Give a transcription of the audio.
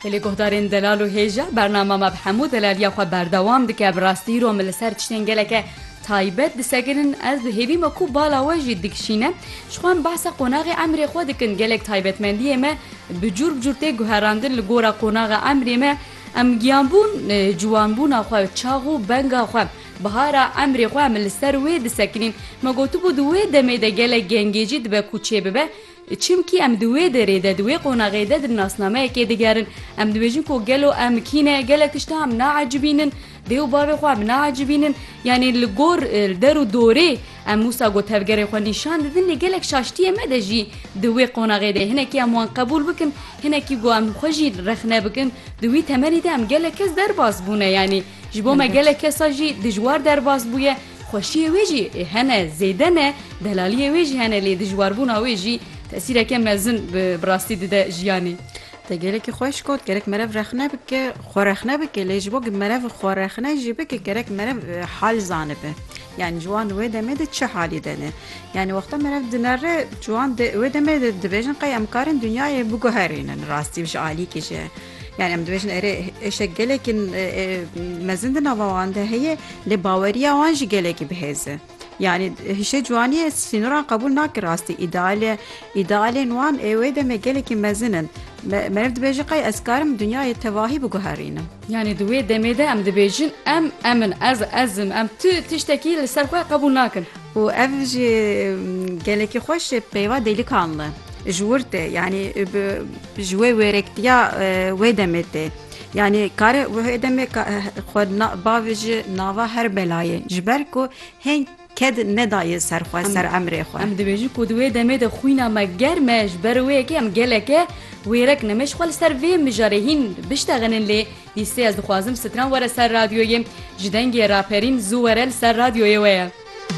Li guhdarên delal û hêja bernama me bi hemû delaliya xwe berdewam dike bi rastî îro min li ser tiştên geleke taybet diseginin ez dihêvî me ku bala we jî dikişîne ji xwe em behsa qonaxê emrê xwe dikin gelek taybetmendiyê me bi cûr bi cûr tê guherandin li gora qonaxa emrê me em giyanbûn ciwanbûna xwe çax û benga xwe bihara emrê xwe em li ser wê disekinîn me gotibû di wê demê de gelek gengê jî dibe ku çê bibe Çimkî em di wê derê de, di wê qonaxê de di nasnameyekê de gerin. Em dibêjin ku gelo em kî ne, gelek tişta em naecibînin, dê û bavê xwe em naecibînin. Yanî li gor der û dorê em wisa ku tevgerê xwe nîşan didin lê gelek şaştiyê me de jî di wê qonaxê de hinekî em wan qebûl bikin, hinekî ku em xwe jî rexne bikin. Di wî temenî de em gelek kes derbas bûne yanî ji bo me gelek kesa jî dijwar derbas bûye. Xweşiyê wê jî hene zêde ne, delaliyê wê jî hene lê dijwarbûna wê jî tesîreke mezin bi rastî dide jiyanê. Te gelekî xweş got, gerek merev rexne bike, xwe rexne bike lê ji bo ku merev xwe rexne jî bike gerek merev hal zanibe. Yanî ciwan di wê demê de çi halî de ne. Yanî wexta merev dinere ciwan di wê demê de dibêjin qey em karin dinyayê biguherînin rastî ji alîkê jî. Yani em dibêjin erê êşek gelekî mezin di nava wan de heye lê baweriya wan jî gelekî bihêz e. Yani hişê ciwaniyê sînoran qebûl nake rastî îdealê îdealên wan ê wê demê gelekî mezin in. Meriv dibêje qey ez karim dinyayê tevahî biguherînim. Yani di wê demê de em dibêjin em em in ez ez im em tu tiştekî li ser xwe qebûl nakin. û ev jî gelekî xweş peyva dêlikan li ji wir tê yani bi Ji wê wêrektiya wê demê tê. Yanî kare wê demê xwe bavê ji nava her belayê ji ber ku hêng ked nedaye ser xwe ser emrê xwe. Em dibêjin ku di wê demê de xwîna me germ e ji ber wê yekê em geleke wêrek ne. Me ji xwe li ser vê mijarê hîn biştexinin lê dîsê ez dixwazim stran were ser radyoyê ji dengê raperîn zû were li ser radyoyê we ye.